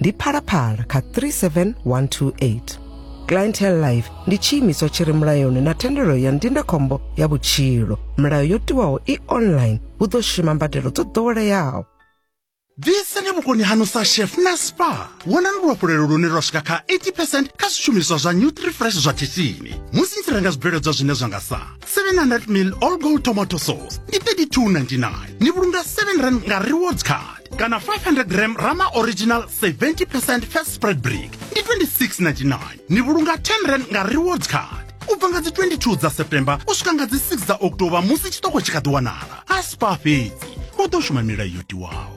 ndi phalaphala kha 37128 clientele life ndi tshiimiswa tshi re mulayoni na thendelo ya ndindakhombo ya vhutshilo milayo yo tiwaho i online hu ḓo shuma mbadelo dzo ḓoweleaho ḓisani vhukoni hanu sa chef na spa wonani luhafhulelo lune lwa swika kha 80 percent kha zwishumiswa zwa nutrifresh zwa khishini musi ni tshi renga zwibveledzwa zwine zwa nga sa 700 mil all gold tomato sauce ndi 3299 ni vhulunga 7 rand nga rewards card kana 500 gram rama original 70 percent fat spread brick ndi 26.99 ni vhulunga 10 rand nga rewards card u bva nga dzi 22 dza september u swika nga dzi 6 dza october musi tshiṱoko tshi kha ḓi wanala a spa fhedzi u ḓo shuma milayo yo tiwaho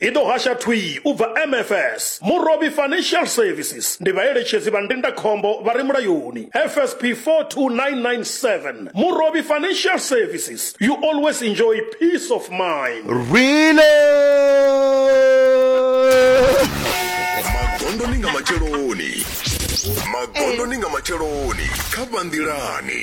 i ḓo hasha thwii u bva MFS, Murovhi Financial Services, ndi vhaeletshedzi vha ndindakhombo vha re mulayoni, FSP 42997, Murovhi Financial Services, you always enjoy peace of mind. Rwile! Magondo ni nga matsheloni. Magondo ni nga matsheloni kha vhanḓilani.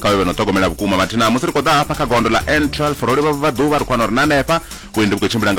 kha vhe vhe no ṱhogomela vhukuma mathina musi ri khou ḓa hafha kha gondo ḽa n12 ro livha vha ḓuvha ri khou wana uri na hanefha vhuendi vhu khou tshimbila nga